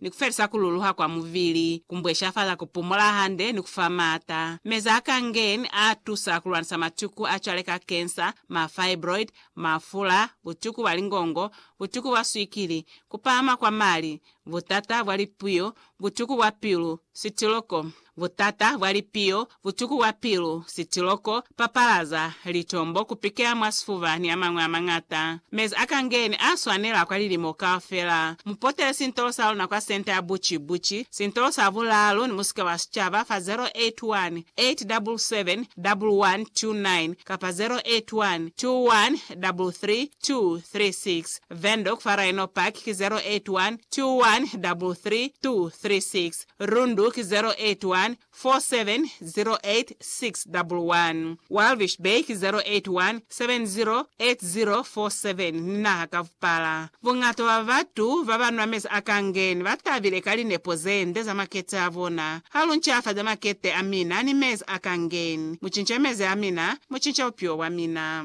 ni ku felisa ku luluha kwa mubili, ku mbweshafala ku pumola hande, ni ku fa maata. Meza a Kangen a tusa ku lwanisa matuku a cwale ka kensa, ma fibroid, mafula, butuku bwa lingongo, butuku bwa swikili, ku pahama kwa mali, butata bwa lipuyo, butuku bwa pilu, sitiloko, Butata bwa lipiyo, butuku bwa pilu, sitiloko, papalaza, litombo, kupikela mwa sifuba ni amañwi amañata. Mezi a kangeni a swanela kwa lilimo kaufela. Mupotele sintolo sa luna kwa Senta ya Buci Buci, sintolo sa bulaalu ni musika wa sicaba fa 0818771129 kapa 0812133236. Windhoek fa Rhino Park ki 0812133236. Rundu ki 0814708611, Walvis Bay ki 0817080047 ni naha ka vupala. Buñata bwa batu baba nwa mezi a kangeni ba tabile ka linepo ze nde za makete a bona. Ha lu ncafaza makete a mina ni mezi a kangeni, mu cinca mezi a mina, mu cinca bupilo bwa mina.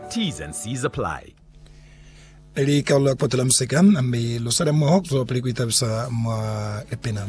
T's and C's apply. Lika lu la kotela musika, mi lu sala moho ku zwa pili ku itabisa mwa lipina.